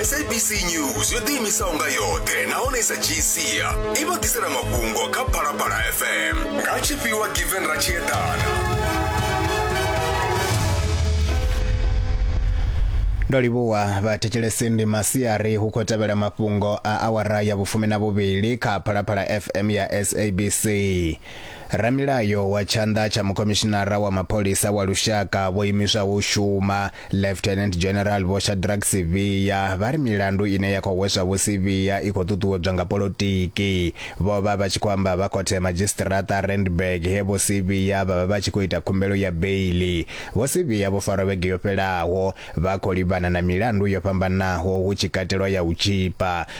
sabc news yo ḓiimisaho nga yoṱhe nahone i sa dzhii sia i vha ḓisela mafhungo kha phalaphala fm nga tshifhiwa given ratshiedana ndo livhuwa vhathetshelesi ndi masiari hu khou tevhela mafhungo a awara ya vhufumi na vhuvhili kha phalaphala fm ya sabc ramilayo wa tshanḓa tsha mukhomishinara wa mapholisa wa lushaka vho imiswaho u shuma Lieutenant General Vho Shadrack Sivhiya vha ri milandu ine ya khou hweswa Vho Sivhiya i khou ṱuṱuwedzwa nga polotiki. Vho vha vha tshi khou amba vha khothe ya madzhisiṱiraṱa Randburg he Vho Sivhiya vha vha vha tshi khou ita khumbelo ya beiḽi. Vho Sivhiya vho farwa vhege yo fhelaho vha khou livhana na milandu yo fhambanaho hu tshi katelwa ya u tzhipa,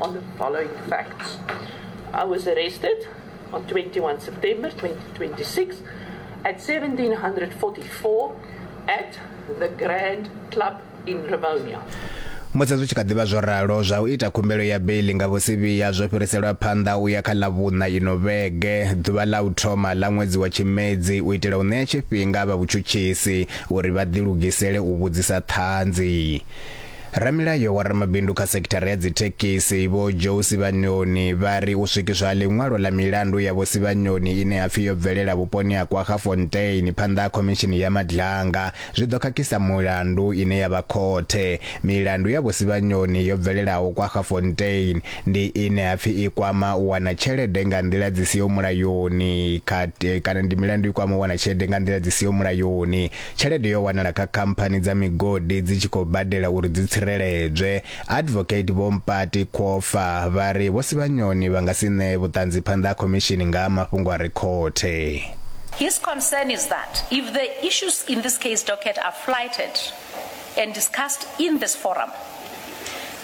on the following facts. I was arrested on 21 September 2026 at 1744 at the Grand Club in Ravonia. musi zwi tshi kha ḓivha zwo ralo zwa u ita khumbelo ya beili nga vhusivhiya zwo fhiriselwa phanḓa u ya kha ḽa vhuṋa ino vhege ḓuvha ḽa u thoma ḽa ṅwedzi wa tshimedzi u itela u ṋea tshifhinga vha vhutshutshisi uri vha ḓilugisele u vhudzisa ṱhanzi Ramilayo wa ramabindu kha sekithara ya dzithekisi Vho Joe Sibanyoni vha ri u swikiswa ha ḽiṅwalo ḽa milandu ya Vho Sibanyoni ine ha pfi yo bvelela vhuponi ha KwaGafontein phanḓa ha khomishini ya Madlanga zwi ḓo khakhisa mulandu ine ya vha khothe. Milandu ya Vho Sibanyoni yo bvelelaho KwaGafontein ndi ine ha pfi i kwama u wana tshelede nga nḓila dzi siho mulayoni kha kana ndi milandu i kwama u wana tshelede nga nḓila dzi siho mulayoni. Tshelede yo wanala kha khamphani dza migodi dzi tshi khou badela uri dzi tsireledzwe. Advocate Vho Mpati Khofa vha ri Vho Sivhanyoni vha nga si ṋee vhuṱanzi phanḓa ha khomishini nga ha mafhungo a re khothe. His concern is that if the issues in this case docket are flighted and discussed in this forum,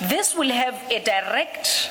this will have a direct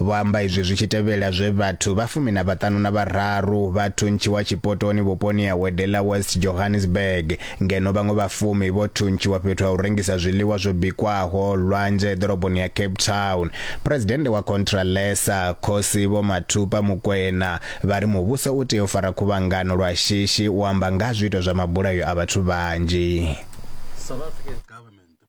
Vho amba izwi zwi tshi tevhela zwe vhathu vha fumi na vhaṱanu na vhararu vha thuntshiwa tshipotoni vhuponi ha Wedela West Johannesburg, ngeno vhaṅwe vha fumi vho thuntshiwa fhethu ha u rengisa zwiḽiwa zwo bikwaho lwanzhe ḓoroboni ya Cape Town. Phresidennde wa Contralesa, Khosi Vho Mathupa Mokoena, vha ri muvhuso u tea u fara khuvhangano lwa shishi u amba nga ha zwiito zwa mabulayo a vhathu vhanzhi.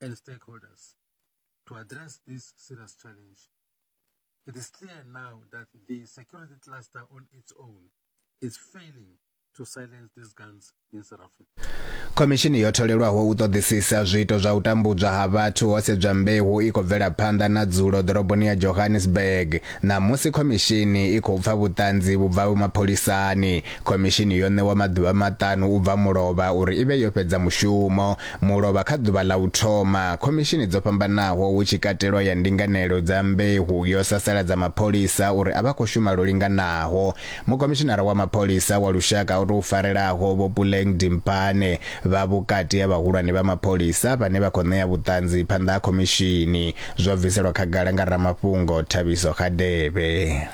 and stakeholders to address this serious challenge. It is clear now that the security cluster on its own is failing to silence these guns in South Africa. khomishini yo tholelwaho u ṱoḓisisa zwiito zwa u tambudzwa ha vhathu ho sedzwa mbeu i khou bvela phanḓa na dzulo ḓoroboni ya johannesburg ṋamusi khomishini i khou pfa vhuṱanzi vhu bvaho mapholisani khomishini yo ṋewa maḓuvha maṱanu u bva mulovha uri i vhe yo fhedza mushumo mulovha kha ḓuvha ḽa u thoma. Khomishini dzo fhambanaho hu tshi katelwa ya ndinganelo dza mbeu yo sasaladza mapholisa uri a vha khou shuma lwo linganaho. Mukhomishinara wa mapholisa wa lushaka o tou farelaho Vho Puleng Dimpane vha vhukati ha vhahulwane vha mapholisa vhane vha khou ṋea vhuṱanzi phanḓa ha khomishini. Zwo bviselwa khagala nga ramafhungo Thabiso Hadebe.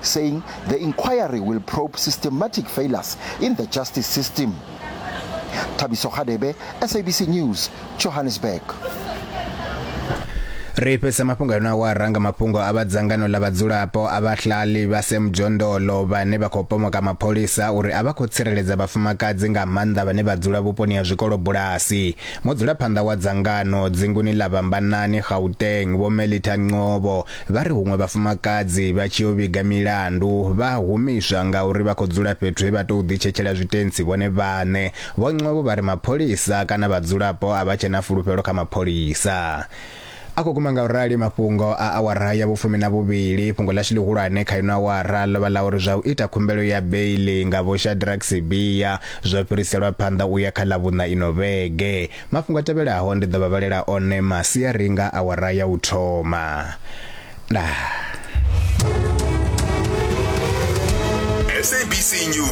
saying the inquiry will probe systematic failures in the justice system. Thabiso Khadebe, SABC News, Johannesburg. ri fhese mafhungo a yona wa ranga mafhungo a vha dzangano ḽa vhadzulapo a vhahlali vha Sam Jondolo vhane vha khou pomoka mapholisa uri a vha khou tsireledza vhafumakadzi nga maanḓa vhane vha dzula vhuponi ha zwikolo bulasi mudzulaphanḓa wa dzangano dzinguni ḽa Vhambanani Gauteng Vho Melita Nqobo Vha ri huṅwe vhafumakadzi vha tshi yo vhiga milandu vha a humiswa ngauri vha khou dzula fhethu he vha tou ḓitshetshela zwitentsi vhone vhaṋe. Vho Nqobo vha ri mapholisa kana vhadzulapo a vha tshe na fulufhelo kha mapholisa. A khou guma ngaurali mafhungo a awara ya vhufumi na vhuvhili. Fhungo ḽashu ḽihulwane kha ino awara ḽo vha ḽa uri zwa u ita khumbelo ya beiḽi nga Vho Shadrack Sibiya zwo fhiriselwa phanḓa u ya kha Ḽavhuṋa ino vhege. Mafhungo a tevhelaho ndi ḓo vha vhalela one masiari nga awara ya u thoma. Ndaa. SABC News.